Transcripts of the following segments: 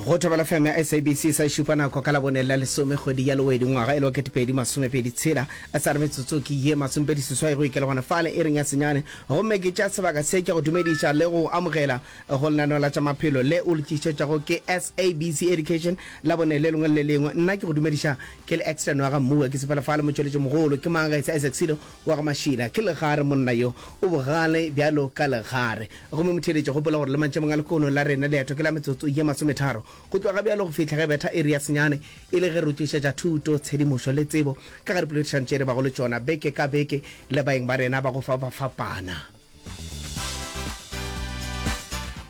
go thobela fm ya sabc sa šupa nako ka labone la lesome kgwedi ya lewedi ngwaga e le wa ketepedi masomepedi tshela a sa re metsotso ke ye masomepedi seswai go ikela gona fale e reng ya senyane gomme ke tša sebaka se ke go dumediša le go amogela go lenaneo la tša maphelo le o le tlišetšago ke sabc education la bone le lengwe le lengwe nna ke go dumediša ke le extern wa ga mmua ke sepela fale motšweletši mogolo ke mang ga e sa isaac selo Wa ga Mašila ke legare, monna yo o bogale bjalo ka legare. Gomme motheeletši, gopola gore le mantšemong a lekono la rena leeto ke la metsotso ye masometharo go tloga bjalo go fihla ge betha iri ya senyane, e le ge re tšhošetša thuto, tshedimošo le tsebo ka ga dipoledišano tše re bago le tšona beke ka beke le baeng ba rena ba go fapafapana.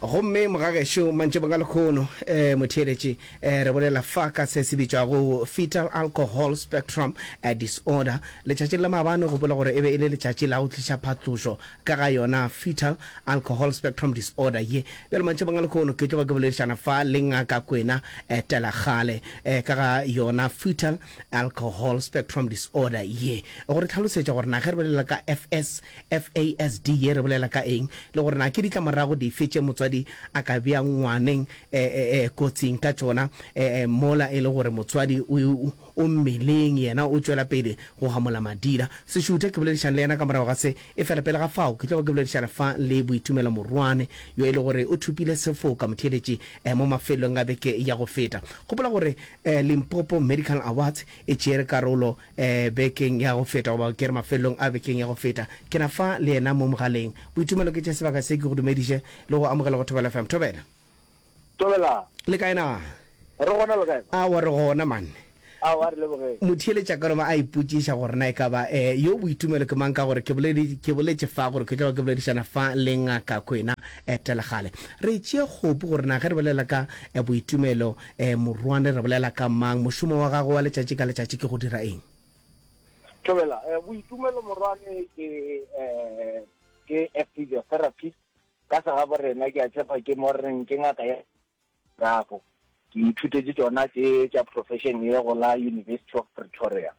gomme mogagešo mantšebong a lekgono um motheeletši um re bolela fa ka se se bitšwago fetal alcohol spectrum eh, disorder letšatšing la maabane gopola gore e be e le letšatši la go tliša phatlošo ka ga yona fetal alcohol spectrum disorder ye bjalo mantšebong a lekgono ke tloga ke boledišana fa le ngaka kwena eh, telagale eh, ka ga yona fetal alcohol spectrum disorder ye go re tlhalosetša gore na ge re bolela ka fs FASD ye re bolela ka eng, le gore na ke ditlamorago dife tše motswadi a ka bea ngwaneng kotsing ka tšona mola e le gore motswadi o mmeleng yena o tšwela pele go gamola madira? Sešuthe ke boledišane le yena ka morago ga se, efela pele ga fao ke tlogo ke boledišana fa le Boitumelo Morwane, yo e le gore o thopile sefoka motheeletši mo mafelelong a beke ya go feta. Gopola gore Limpopo Medical Awards e tšere karolo Bekeng ya go feta, goba ke re mafelelong a bekeng ya go feta, ke na fa le yena mo mogaleng. Boitumelo ke tše sebaka se. Ke go dumediše le go amogela go Thobela FM. Thobela! Thobelang! Le kae na? Re gona, le kae? Aowa, re gona, man. Aowa, re lebogeng. Motheeletša ka loma a ipotšiša gore na e ka ba yo Boitumelo ke mang, ka gore ke boleditše, ke boletše fa gore ke tloga ke boledišana fa le Ngaka Kwena etela kgale. Re tšee kgopu gore na ge re bolela ka Boitumelo, Eh, morwane, re bolela ka mang? Mošomo wa gagwe wa letšatši ka letšatši ke go dira eng? Thobela, eh, Boitumelo morwane ke eh, ke a physiotherapist. Ka segabo rena ke a tšhepa ke mo reng ke ngaka ya gago. Ke ithutetše tšona tše tša profession ye go la University of Pretoria.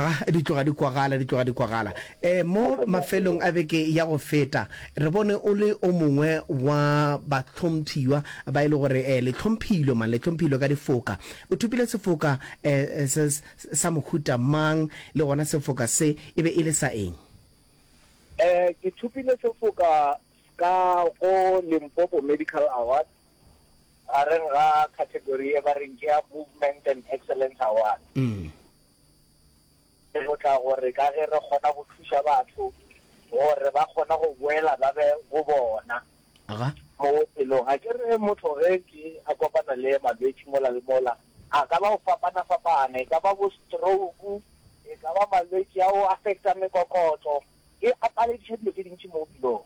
A di tloga di kwagala, di tloga di kwagala. E, mo mafelong a beke ya go feta, re bone o le o mongwe wa bahlomphiywa ba e le gore e, le hlomphilwe, man, le hlomphilwe ka difoka. O thopile sefoka e, e, se, se, sa mohuta mang, le gona sefoka se e be e le sa eng? E, ke thopile sefoka ska go Limpopo Medical Awards, gareng ga category e ba reng ke ya Movement and Excellence Award. Re tlotla gore ka ge re kgona go thuša batho gore ba kgona go boela ba be go bona mo bophelong. A ke re motho ge ke a kopana le malwetši mola le mola, a ka ba go fapana-fapana, e ka ba bo stroke, e ka ba malwetši ao affect-ang mekokotlo, e apareditše dilo tše dintši mo bophelong.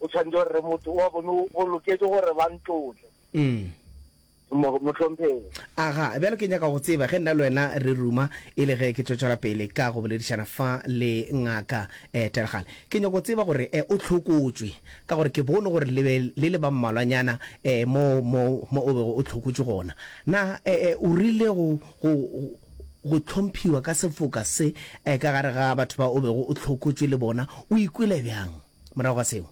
o tshwanetse gore re motho wa bone o loketse gore ba ntlotle motlhompheng aga bjalo ke nyaka go tseba ge nna le wena re ruma e le ge ke tswetswela pele ka go boledišana fa le ngaka um tergale ke nyaka go tseba gore um o tlhokotswe ka gore ke bone gore le be le le ba mmalwanyana um mo mo mo o bego o tlhokotswe gona na um o rile go go go tlhomphiwa ka sefoka se um ka gare ga batho ba o bego o tlhokotswe le bona o ikwele bjang morago ga seo.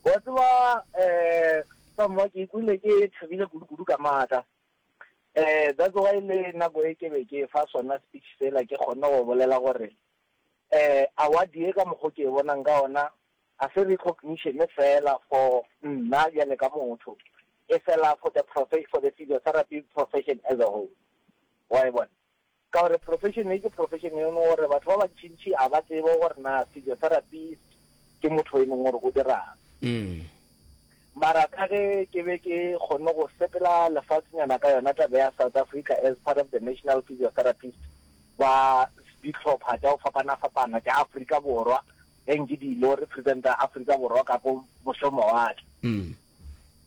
Wa tseba, um sa mma, ke ikwele ke thabile kudu-kudu ka maaka. Um that's why le nako e ke be ke fa sona speech sela, ke kgonne go bolela gore, um award ye ka mokgo ke e bonang ka ona, ga se recognition fela for nna bjale ka motho, e fela for the for the physiotherapy profession as a whole. Wa e bona? Ka gore profession ye ke profession e leng gore batho ba bantšintši ga ba tsebe gore na physiotherapist ke motho e leng gore o dirang. Mara ka ge ke be ke kgonne go sepela lefasnyana ka yona taba ya South Africa as part of the national physiotherapist ba dihlopha tša go fapana-fapana tša Afrika Borwa, ge nke di ile go representa Afrika Borwa ka ko mošomawatle.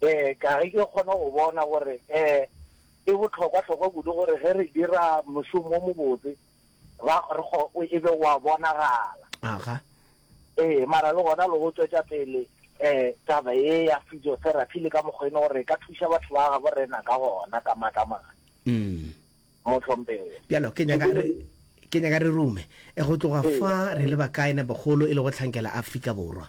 Ee, ka ge ke kgona go bona gore ee e bohlokwa-hlokwa kudu gore ge re dira mošomo o mobotse ra re go e be wa bonagala. Aga. Ee, mara le gona le go tswetša pele um taba ye ya physiotherapy le ka mokgwa e no gore e ka thuša batho ba gabo rena ka gona ka matla mane. Mm. Motlhomphego. Bjalo ke nyaka re ke nyaka re rume e go tloga fa re le bakae na bogolo e le go tlhankela Afrika Borwa.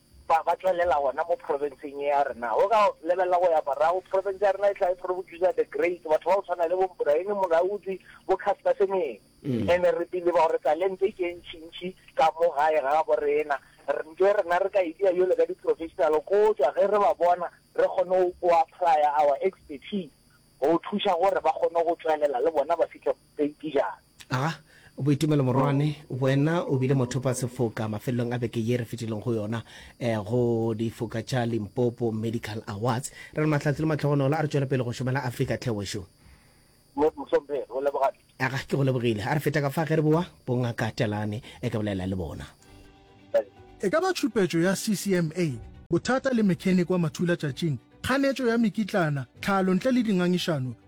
Ba, ba tšwelela gona mo profenseng ye ya rena. O ka lebelela go ya morago, profense ya rena e tla e phrobucusa the great, batho ba go tshwana le bo Mbraene Molaudzi, bo Caster Semenya. And-e re believe-a gore talente e tše ntšintši ka mo gae ga gabo rena. Re nke rena re ka e dia bjalo ka di-professional ko tšwa ge re ba bona, re kgone go, go apply-a our expertise go thuša gore ba kgone go tšwelela le bona ba fihle mo. Tsenkijane. A, Boitumelo Morwane, wena o bile mothopasefoka mafelelong a beke ye re fetilego go yona go difoka tša Limpopo Medical Awards. Re re mahlatse le mahlogonolo a re tšwele pele go šomela Afrika tlhe wešo. Mohlomphegi, o leboga di. A, Ga ke go lebogile. A re feta ka fa ge re boa bongaka Telane e ka bolela le bona. Thanks. E ka ba tšhupetšo ya CCMA, bothata le mechanic wa mathulatšatšing, kganetšo ya mekitlana, tlhalo ntle le dingangišano,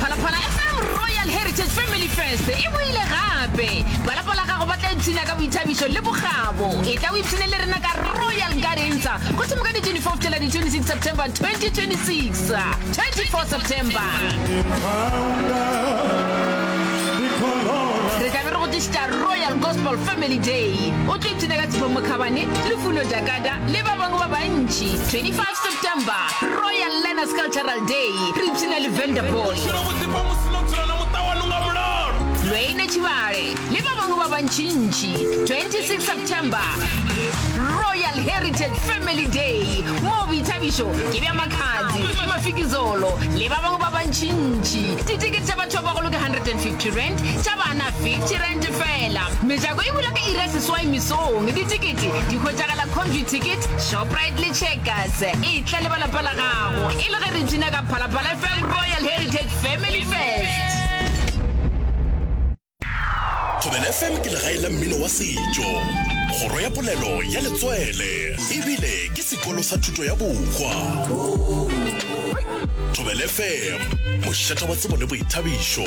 phalaphala fm royal heritage family fest e boile gape balapa la gago ba tla ipshina ka boithabišo le bogabo e tla o ipshine le rena ka royal garensa go thimo ka di-24 tela di-26 september 2026 24 september re tla be re go tlišitša royal gospel family day o tlo ipshina ka tshifo mokhabane lefuno jakada le ba bangwe ba bantši 25 September, Royal Learners Cultural Day, re ipshina le Vanderbilt. Lweine Tshivhale le ba bangwe ba bantšintši, 26 September, Royal Heritage Family Day, moo boithabišo ke bja makhanzi, mafikizolo le ba bangwe ba bantšintši. Ditikete tša batho ba bagolo ke R150, tša bana R50 feela. Mejako e bula ka iri ya seswai mesong. Ditikete di hwetšagala Comvuticket. Shoprite le Checkers e tla le ba lapa la gago e le ge re tuna ka Phalaphala FM Royal Heritage Family Fest. Thobela FM ke legae la mmino wa setšo, kgoro ya polelo ya letswele ebile ke sekolo sa thuto ya bokgwa. Thobela FM, mošata wa tsebo le boithabišo.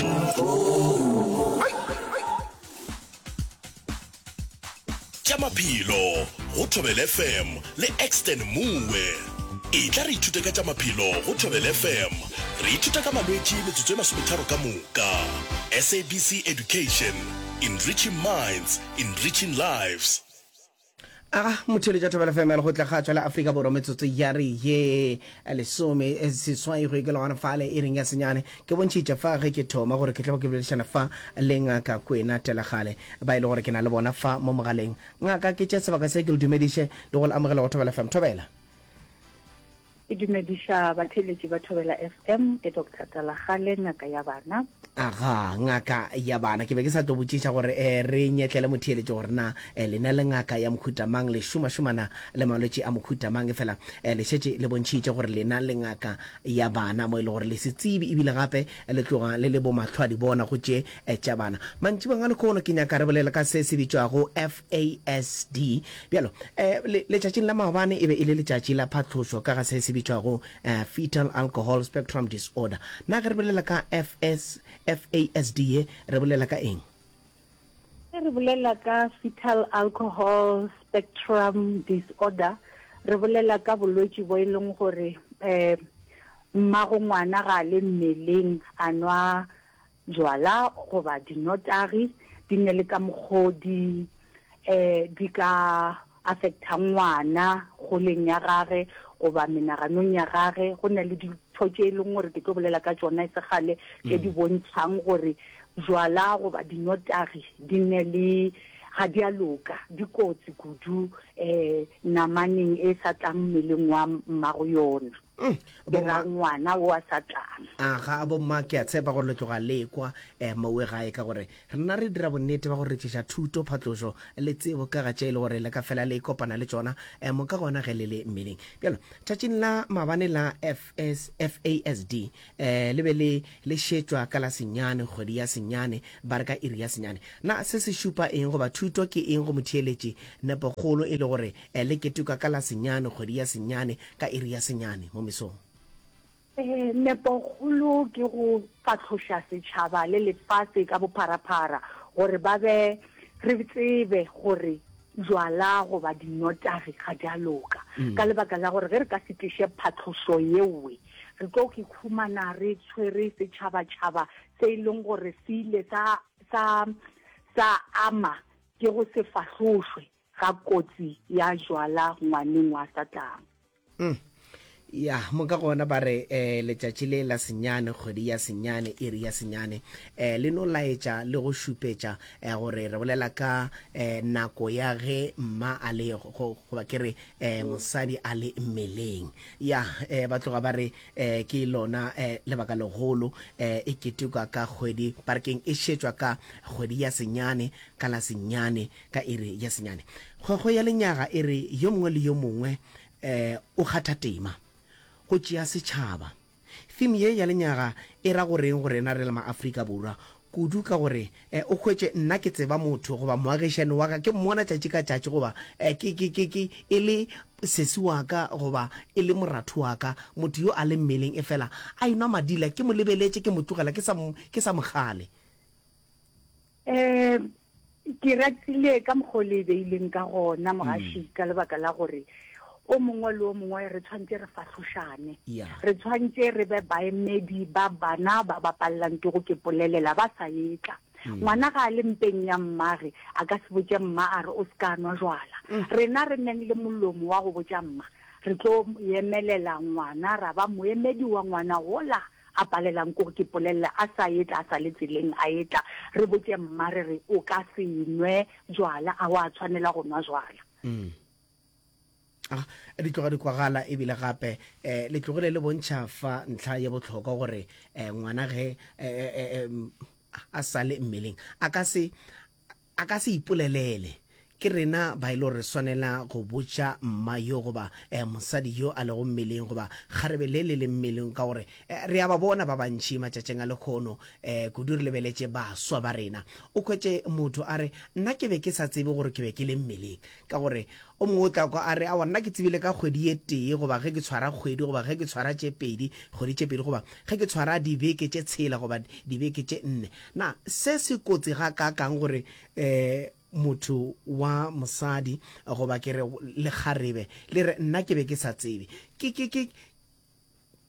tša maphelo go Thobel FM le Exton Moe. Etla re ithute ka tša maphelo go Thobel FM. Re ithuta ka malwetši metsotso e masometharo ka moka. SABC Education, Enriching Minds, Enriching Lives. Aga motheletši wa Thobela FM ya Lekgotla Kgatšwa la Afrika Borwa metsotso ya re ye lesome seswai go ikela gona fale e reng ya senyane Ke bontšhitše fa ge ke thoma gore ke tlogo ke boledišana fa le Ngaka Kwena Telagale, ba e le gore ke na le bona fa mo mogaleng. Ngaka, ke tše sebaka se ke le dumediše le go le amogela go Thobela FM. Thobela! Ke dumediša batheeletši ba Thobela FM, ke Doctor Telagale, Ngaka ya Bana. Aga, Ngaka ya Bana, ke be ke sa tlo botšiša gore e re nyetlele motheeletši gore na e lena le ngaka ya mohuta mang, le šomašomana le malwetši a mohuta mang, efela e le šetše le bontšhitše gore lena le ngaka ya bana mo e le gore le se tsebe ebile gape le tloga le le bomahlwadibona go tše tša bana. Mantšibong a lekhono ke nyaka re bolele ka se se bitšwago FASD. Bjalo, le, letšatšing la maobane e be e le letšatši la phatlošo ka ga se se bitšwago Fetal Alcohol Spectrum Disorder. Na ge re bolela ka FASD ye re bolela ka eng? Ge re bolela ka fetal alcohol spectrum disorder, re bolela ka bolwetši bo e leng gore um mmagongwana ga a le mmeleng a nwa jwala goba dinotagi, di nne le ka mokgwa o di um di ka affecta ngwana kgoleng ya gage goba menaganong ya gage. Go na le dintho tše e leng gore ke tlo bolela ka tšona e se kgale tše di bontšhang gore bjwala goba dinotagi di nne le ga di a loka, di kotsi kudu um namaneng e sa tlang mmeleng wa mmago yona. ke ra ngwana wa satana a ga bo mma ke a tshepa gore le tloga lekwa eh, mowe gae ka gore rena re dira bonnete ba go retšiša thuto phatlošo le tsebo ka ga tše e le gore le ka fela le kopana le tšona eh, moka gona ge le le mmeleng bjalo tšatšing la mabane la FS, fasd eh, le be le le šetšwa ka la senyane kgwedi ya senyane ba re ka iri ya senyane na se se šupa eng goba thuto ke eng go motheeletši nepo kgolo e le gore E le ketuka ka la senyane, kgwedi ya senyane, ka iri ya senyane, mo mesong. Ee, nepokgolo ke go fahloša setšhaba le lefase ka bopharaphara gore ba be, re tsebe gore jwala goba dinotagi ga di a loka. Ka lebaka la gore ge re ka se tliše phatlošo yeowe, re tlo ikhumana re tshwere setšhabatšhaba se e leng gore se ile sa, sa, sa ama ke go se fahlošwe. ga kotsi ya jwala ngwaneng wa Satana. Mm. Ya, mo ka gona ba re eh, letšatši le la senyane, kgwedi ya senyane, iri ya senyane eh, le no laetša le go šupetša eh, gore re bolela ka eh, nako ya ge mma a le go- go- goba ke re eh, mosadi a le mmeleng. Ya, eh, ba tloga ba re eh, ke lona eh, lebaka legolo eh, e ketekwa ka kgwedi, ba re keng e šetšwa ka kgwedi ya senyane ka la senyane ka iri ya senyane. Kgwekgwe ya lenyaga e re yo mongwe le yo mongwe o kgatha tema, go tšea setšhaba. Theme ye ya lenyaga e ra go reng go rena re le maAfrika Borwa, kudu ka gore o hwetše nna ke tseba motho goba moagišani wa ka ke mmona tšatši ka tšatši goba e le sesi wa ka goba e le moratho wa ka, motho yo a leng mmeleng efela a enwa madila, ke mo lebeletše ke mo tlogela ke sa mo kgale. um ke ratile ka mokgwa o le e beileng ka gona mogaši mm. ka lebaka la gore o mongwe le o mongwe re tshwanetse re fahlošane re tshwanetse re be baemedi ba bana ba ba palelang ke go ke polelela ba sa etla mm. ngwana ga a le mpeng ya mmage a ka se botse mma a re o se ka nwa jwala mm. rena re neng le molomo wa go botsa mma re tlo emelela ngwana ra ba moemedi wa ngwana gola A palelang kore ke polelele a sa etla a sa le tseleng a etla. Re botše mma re re o ka se nwe jwala a wa tshwanela go nwa jwala. Mm. A di tloga di kwagala ebile gape eh, le tlogile le bontšha fa ntlha ye botlhokwa gore eh, ngwana ge eh, eh, eh, a sale mmeleng a ka se A ka se ipolelele. Ke rena ba e le gore re swanela go botša mma yo goba eh, mosadi yo a lego mmeleng goba kgarebe le le leng mmeleng ka gore eh, re a ba bona ba bantši matšatšing a lekhono eh, kudu re lebeletše baswa ba rena. O hwetše motho a re, Nna ke be ke sa tsebe gore ke be ke le mmeleng. Ka gore, o mongwe o tla kwa a re, Aowa, nna ke tsebile ka kgwedi ye tee, goba ge ke tshwara kgwedi, goba ge ke tshwara tše pedi, kgwedi tše pedi, goba ge ke tshwara dibeke tše tshela, goba dibeke tše nne. Na se se kotsi gakaakang gore motho wa mosadi, goba ke re lekgarebe, le re, Nna ke be ke sa tsebe? Ke, ke, ke,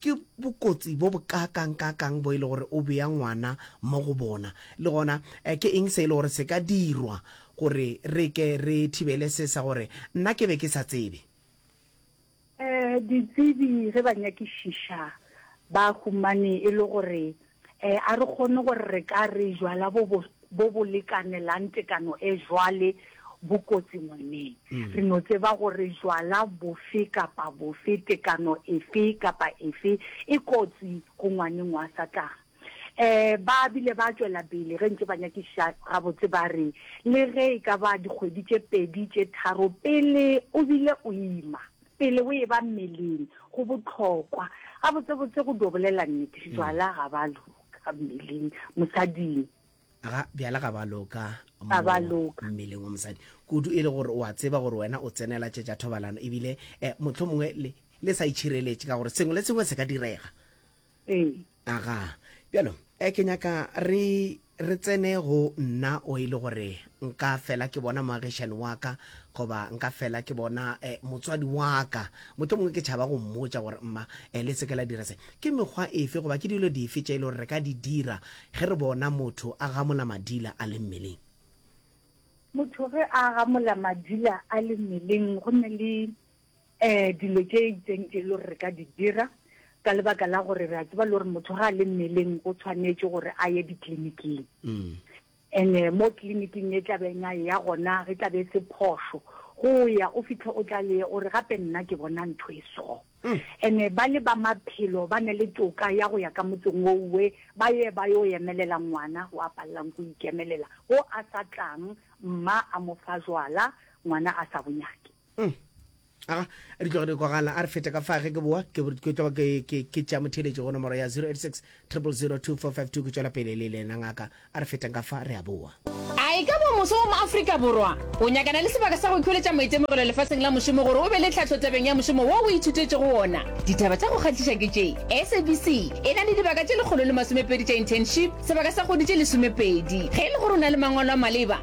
Ke bokotsi bo bokaakangkaakang bo e le gore o bea ngwana mo go bona! Le gona ke eng se e le gore se ka dirwa gore re ke re thibele se sa gore nna ke be ke sa tsebe? Ditsebi ge ba nyakišiša ba humane e le gore E, a re kgone gore re ka re jwala bo bo, bo bo lekanelang tekano e jwale bo kotsi ngweneng. Re no tseba gore jwala bofe kapa bofe, tekano efe kapa efe, e kotsi go ngwaneng wa Satana. E, ba bile ba tšwela pele ge ntše ba nyakišiša gabotse ba re, Le ge e ka ba dikgwedi tše pedi tše tharo pele o bile o ima, Pele o eba mmeleng, go bohlokwa. Gabotsebotse, go dio bolela nnete, bjala ga ba loka mmeleng, mosading. Ga bjala ga ba loka mo mmeleng wa mosadi, kudu e le gore o a tseba gore wena o tsenela tše tša thobalano ebile mohlomongwe le sa itšhireletše ka gore sengwe le sengwe se ka direga. ee aga bjalo eh, ke nyaka re re tsene go nna o e le gore nka fela ke bona moagišani wa ka goba nka fela ke bona eh, motswadi wa ka motlho mongwe ke tšhaba go mmotsa gore mma eh, le seke la dira se ke mekgwa efe goba ke dilo dife tše e le gore re ka di dira ge re bona motho a gamola madila a le mmeleng motho ge a gamola madila a le mmeleng go ne le Ee, dilo tše itseng e le gore re ka di dira ka lebaka la gore re a tseba le gore motho ga a le mmeleng o tshwanetse gore a ye ditleliniking ene mm. mo tleliniking e tlabeng a ya gona re tlabe se phoso go ya o fitlhe o tla le o re gape nna ke bona ntho e so ene mm. ba le ba maphelo ba ne le toka ya go ya ka motseng o uwe ba ye ba yo emelela ngwana o a palelang go ikemelela o a sa tlang mma a mo fa jwala ngwana a sa bonyake mm. aga re tloge re kwagala a re fete ka fage ke boa ke tloga ke tša motheletši go nomoro ya 086 002452 ke tšwela pele le lena ngaka a re feteng ka fa re a boa a e ka bo moso wa maaforika borwa o nyakana le sebaka sa go ikholetša maitemogelo lefatsheng la mošomo gore o be le tlhatlho tabeng ya mošomo wo o ithutetše go wona ditaba tša go kgatliša ke tše sabc e na le dibaka tše lekgolo le masomepedi tša internship sebaka sa kgodi tše lesomepedi ge e le gore o na le mangwalo a maleba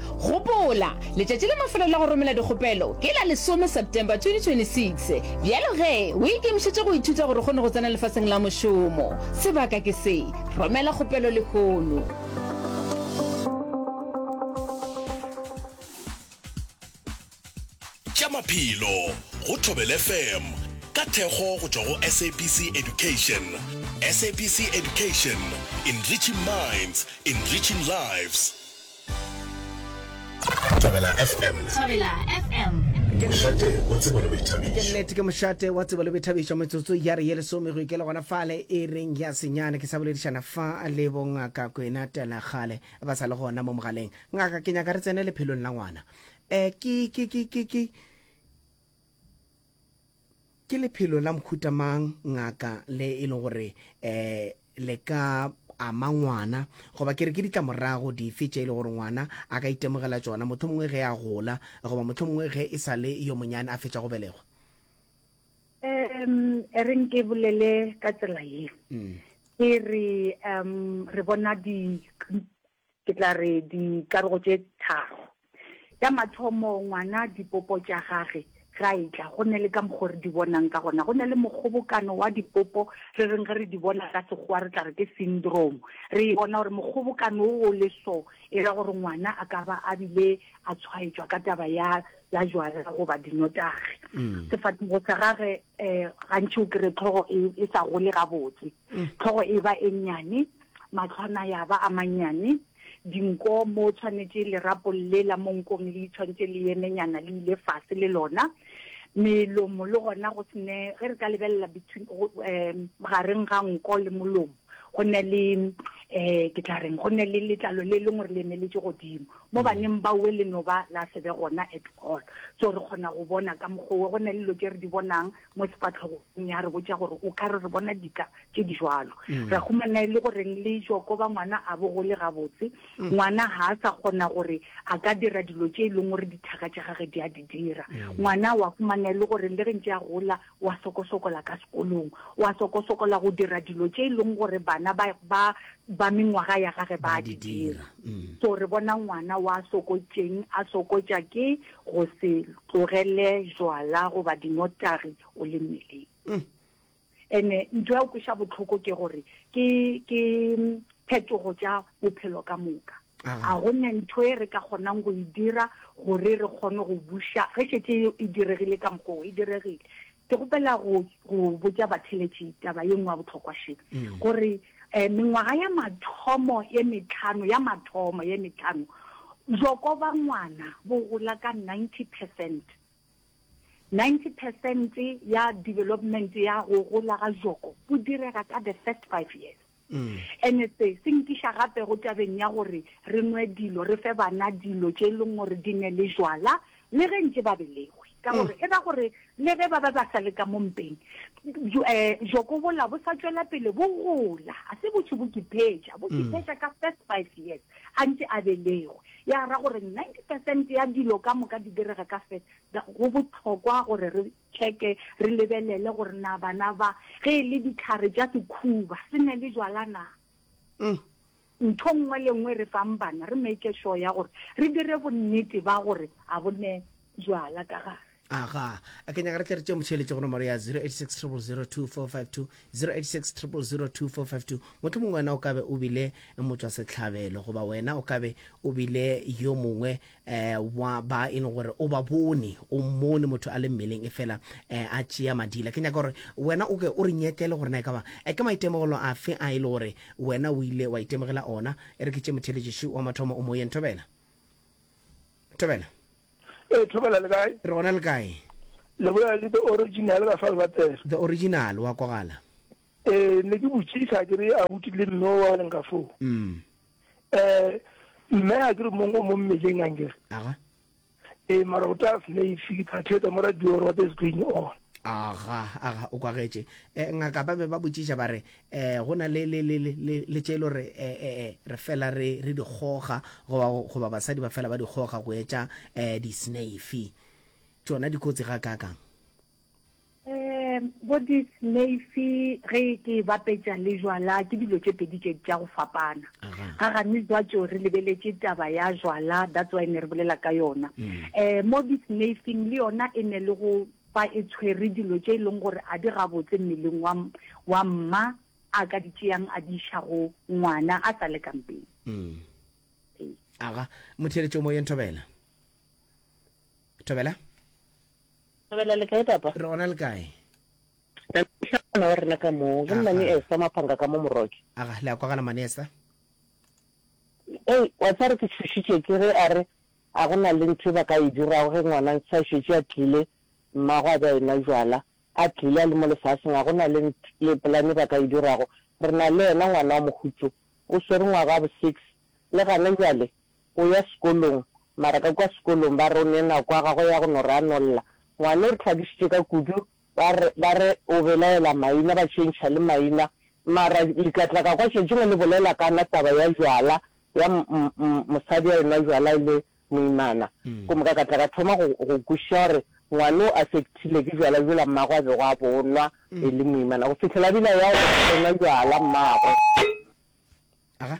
Gopola, letšatši la mafelelo la go romela dikgopelo ke la lesome September 2026. Bjalo ge o ikemišetše go ithuta gore o kgone go tsena lefaseng la mošomo, sebaka ke se, romela kgopelo lehono. Tša maphelo go Thobela FM ka thekgo go tšwa go SABC Education. SABC Education, enriching minds, enriching lives. Thobela FM. Thobela FM. Ke mošate wa tsebo le boithabišo. Ke nnete ke mošate wa tsebo le boithabišo metsotso ya re ye lesome go ikele gona fale e reng ya senyane ke sa boledišana fa le bongaka kwena telegale ba sa le gona mo mogaleng ngaka ke nyaka re tsene lephelong la ngwana Eh, ke, ke, ke, ke, ke, ke lephelo la mokhuta mang ngaka le e le gore eh le ka ama ngwana goba ke re ke ditlamorago dife tše e le gore ngwana a ka itemogela tsona motho mongwe ge a gola goba motho mongwe ge e sa le yo monyane a fetša go belegwa um e reng ke bolele ka tsela ye mm. ke re um re bona di Ke tla re dikarogo tše tharo. Ya mathomo, ngwana dipopo tša gage ge a etla, go nne le ka mokgwa o re di bonang ka gona. Go nne le mokgobokano wa dipopo, re reng ge re di bona ka Sekgowa re tla re ke syndrome. Re e bona gore mokgobokano wo o le so, e ra gore ngwana a ka ba a bile a tshwaetšwa ka taba ya ya jwala goba dinotagi. Sefatlhego sa gage um gantši o kry-e tlhogo e, e sa gole gabotse. Tlhogo e ba e nnyane, mahlo a na ya ba a mannyane, dinko mo o tshwanetše lerapo le la mo nkong le itshwantše le yemenyana le ile fase le lona, melomo le gona go se ne, ge re ka lebelela between, um gareng ga nko le molomo go ne le, um ke tla reng, go ne le letlalo le lengwe re le emeletše godimo. Mo baneng baowe le no ba la se be gona at all. So re kgona go bona ka mokgwa owe, go na le dilo tše re di bonang mo sefahlogong ya re botša gore o ka re re bona dika tše di jwalo mm. ra humana e le goreng le joko ba ngwana a bo gole gabotse mm. ngwana ga a sa kgona gore a ka dira dilo tše e leng gore dithaka tša gage di a di dira mm. ngwana wa humana e le gore le re ntse a gola wa sokosokola ka sekolong wa sokosokola go dira dilo tše e leng gore bana ba ba ba mengwaga ya gage ba di dira so re bona ngwana wa sokotšeng a sokotša ke Go se tlogele jwala goba dinotagi o le mmeleng. Ene ntho ya go kweša bohloko ke gore ke ke phetogo tša bophelo ka moka. Ga go ne ntho e re ka kgonang go e dira gore re kgone go buša ge šetše e diregile ka mokgwa o e diregile. Ke kgopela go go botša batheletši taba ye nngwe ya bohlokwa še, gore um mengwaga ya mathomo ye metlhano, ya mathomo ye metlhano, bjoko bja ngwana bo gola ka ninety percent. Ninety percent ya development ya go gola ga bjoko bo direga ka the first five years. Ene se, se nkiša gape go tabeng ya gore re nwe dilo, re fe bana dilo tše e leng gore di ne le jwala, le ge ntše ba belegwe. Ka gore e ra gore le ge ba be ba sa le ka mo mpeng, bjo, eh, bjoko bola bo sa tšwela pele bo gola. A se botho bo kiphetša, bo kiphetša ka first five years a ntše a belegwe. Ya ra gore ninety percent ya dilo ka moka di direga ka first, go bohlokwa gore re Tšeke re lebelele gore na bana ba, ge e le ditlhare tša sekhuba, se ne le jwala na. Mm. Ntho nngwe le nngwe re fang bana, re make sure ya gore re dire bonnete ba gore a bo ne jwala ka gare. aga a ke nyaka re tle re tše motšheletše gona mare ya 0860022452 0860022452 motlho mongwe wena o kabe o bile motswa sehlabelo goba wena o kabe o bile yo mongwe um wa ba e le gore o ba bone o mmone motho a le mmeleng e fela um a tšea madila ke nyaka gore wena o ke o re nyekele gore na e ka ba um ke maitemogelo afe a e le gore wena o ile wa itemogela ona e re ke tše motheletšiši wa mathomo o moyeng thobela thobela ee thobela le kae re gona le kae le bolela le the original ba fa le batela the original wa kogala Ee, ne ke botšiša ke re abuti le mme o a leng ka foo. Mm. Eh, mme a ke re mongwe mo mmeleng a nkere. Aha. Ee, mara o tla slave ke tla theetsa mo radio gore what is going on. Aga, aga, o kwagetše. Eh, ngaka ba be ba botšiša ba re, eh, go na le, le, le, le, le, le tše lo re, eh, eh, eh, re fela re, re di goga, goba, goba basadi ba fela ba di goga go etša, eh, di-snave. Tšona dikotsi ga kakang. Um bo disneyfi ge ke e bapetša le jwala ke dilo tše pedi tše tša go fapana ga gane jwatso re lebeletše taba ya jwala that's why ne re bolela ka yona um mo disneyfing le yona e ne le go fa e tshwere dilo tše e leng gore a di gabotse mmeleng wa wa mma a ka di tšeang a di iša go ngwana a sa le kampeng aga motheeletšo moyeng thobela thobela thobela le kae papa re gona le kae tlhana wa rena ka moo ke nna ni esa maphanga ka mo moroke aga le a kwagala manesa ei wa tsare ke tshushitše ke re a re a go na le ntho e ba ka e dirago ge ngwana ntse a šetše a tlile mmago a be a ena jwala a tlile a le mo lefaseng a go na le le polane ba ka e dirago re na le ena ngwana wa mogutso o swere ngwaga wa bo six le gane jwale O ya sekolong, mara ka kua sekolong ba re o ne nako ya gagwe ya go no ranolla. Ngwane o re hlakišitše ka kudu, ba re, ba re o belaela maina, ba tšhentšha le maina. Mara le ka tla ka kwa tšatši lengwe le bolela ka na taba ya jwala, ya mosadi a enwa jwala e le moimana. Go moka ka tla ka thoma go, go kwešiša gore ngwane o affectile ke jwala jola mmagwe a bego a bo nwa e le moimana. Go fihlela a bile a ya go enwa jwala mmagwe. Aga.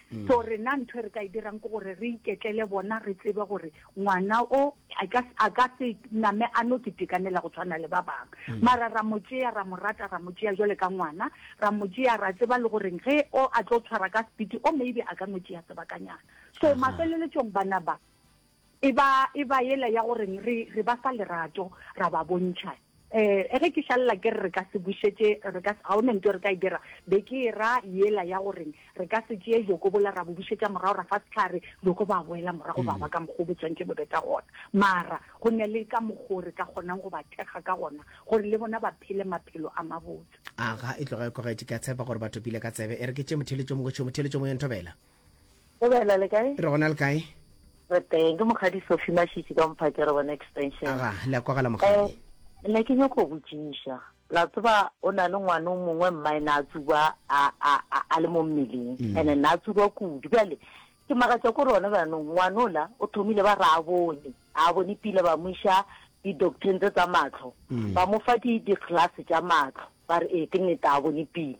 Mm. so rena ntho e re ka e dirang ke gore re iketlele bona re tsebe gore ngwana o a ka se name a no ke tekanela go tshwana le ba bangwe mm. mara ra mo tšea ra mo rata ra mo tšea jale ka ngwana ra mo tšea ra tseba le goreng ge o a tlo tshwara ka sepiti o maybe a ka no tšea sebakanyana so mafeleletšong bana ba E ba, e ba yela ya go reng re, re ba fa lerato, ra ba bontšha. E, ge ke šalela ke re re ka se bušetše, re ka se, ga go na ntho e re ka e dira, be ke e ra yela ya go reng re ka se tšee bjoko bola ra bo bušetša morago, ra fa sehlare, bjoko ba boela morago ba ba ka mokgwa o bo tswantše bo be ka gona. Mara go na le ka mokgwa o re ka kgonang go ba thekga ka gona gore le bona ba phele maphelo a mabotse. Aga, e tloga e kogetše. Ke a tshepa gore ba topile ka tsebe. E re ke tše motheletšomong go tšhwe motheletšomong, yo nthobela. Go bela le kae? Re gona le kae? Re teng, ke mokgadi Sophie Mashitši ka Mphake re bona extension. Aga, le a kwagala mokgadi. Eh, ne ke nyoko go botšiša. La tseba o na le ngwana o mongwe mmae na a tsuba a a a, a le mo mmeleng. Mm. Ene na tsuba kudu. Bjale ke magatša ko rona banong ngwanola o thomile ba ra bone. A bone pila ba mo iša di docteng tse tsa matlho. Mm. Ba mo fa di di class tša matlho. Ba re e ke nete a bone pila.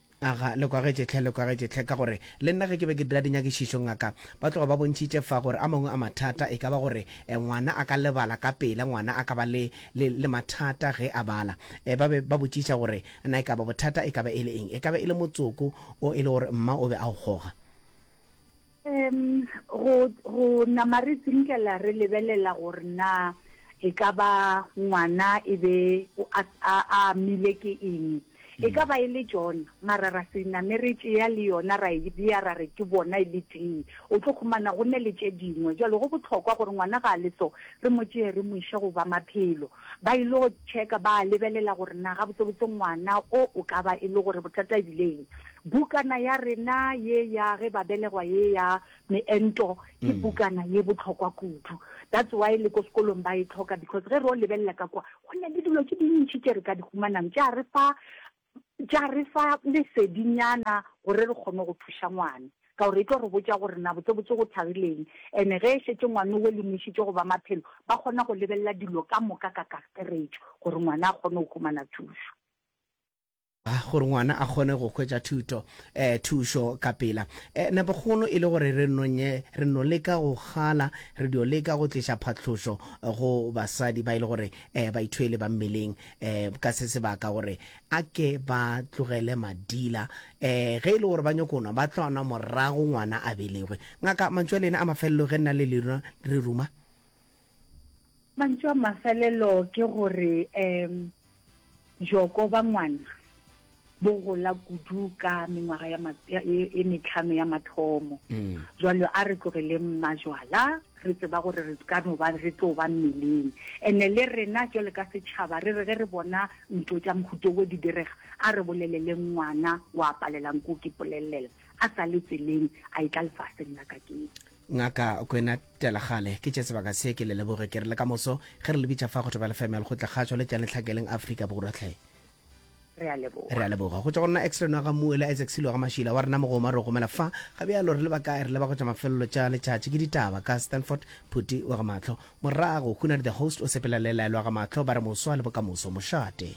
Aga, le kwagetše hle, le kwagetše hle, ka gore le nna ge ke be ke dira dinyakišišo, ngaka, ba tloga ba bontšhitše fa gore a mangwe a mathata e ka ba gore ngwana a ka lebala ka pela, ngwana a ka ba le, le, le mathata ge a bala. Ba be ba botšiša gore na e ka ba bothata e ka ba e le eng. E ka ba e le motsoko o e le gore mma o be a o goga. Um go, go nama re tsinkela re lebelela gore na e ka ba ngwana e be a, a, a amile ke eng. E ka ba e le John, mara ra se name re tšea le yona ra e bea ra re ke bona e le tee. O tlo khumana go ne le tše dingwe. Jwale go bohlokwa gore ngwana ga a le so, re mo tšee re mo iše go ba maphelo. ba il'o tšheka ba lebelela gore na gabotsebotse ngwana o o ka ba e le gore bothata e bile eng. Bukana ya rena ye ya ge ba belegwa ye ya meento ke bukana ye bohlokwa kudu. That's why le ko sekolong ba e hloka because ge re o lebelela ka kwa go na le dilo tše dintši tše re ka di humanang tša re fa tša re fa lesedinyana gore re kgone go thuša ngwane, ka gore e tlo re botša gore na botsebotse go thagileng. Ene ge e šetše ngwane o lemošitšwe go ba maphelo, ba kgona go lebelela dilo ka moka ka kakaretšo gore ngwana a kgone go humana thušo. Gore ngwana a kgone go hwetša thuto, eh, thušo ka pela. Eh, nepokgolo e le gore re no nye, re no leka go gala, re dio leka go tliša phatlošo go basadi ba e le gore, eh, baithwele ba mmeleng. um ka se sebaka gore a ke ba tlogele madila um ge e le gore ba nyoko nwa ba tlo nwa morago ngwana a belegwe ngaka mantšu a lena a mafelelo ge nna le lena re ruma mantšu a mafelelo ke gore um joko ba ngwana bo gola kudu ka mengwaga ya ma, ya, e, e metlhano ya mathomo. Mm. Jwale a re tlogeleng majwala, re tseba gore re ka no ba re tlo ba mmeleng ene le rena jwale ka setšhaba re re ge re bona ntlo tša mohuto wo di direga a re boleleleng ngwana wa palelang ko ke polelelela a sa le tseleng a e tla lefaseng la ka kete ngaka kwena telagale ke tše sebaka se ke le leboge ke re le ka moso ge re lebitša fa go tebelefemel go tla kgatšwa le tšane tlhakeleng afrika borwatlhe re a leboga re a leboga go tšwa go nna extra nwa ga muela isaac selo ga mašila wa rena mogoma re gomela fa ga bjalo re leba kae re leba go tšwa mafelelo tša letšatši ke ditaba ka stanford phuti wa ga matlho morago hunadi the host o sepela le laelwa ga matlho ba re moswa le bokamoso mošate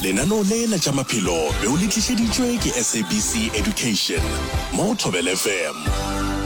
Lenaneo lena tša maphelo be o le tlišeditšwe ke SABC Education mo go Thobela FM.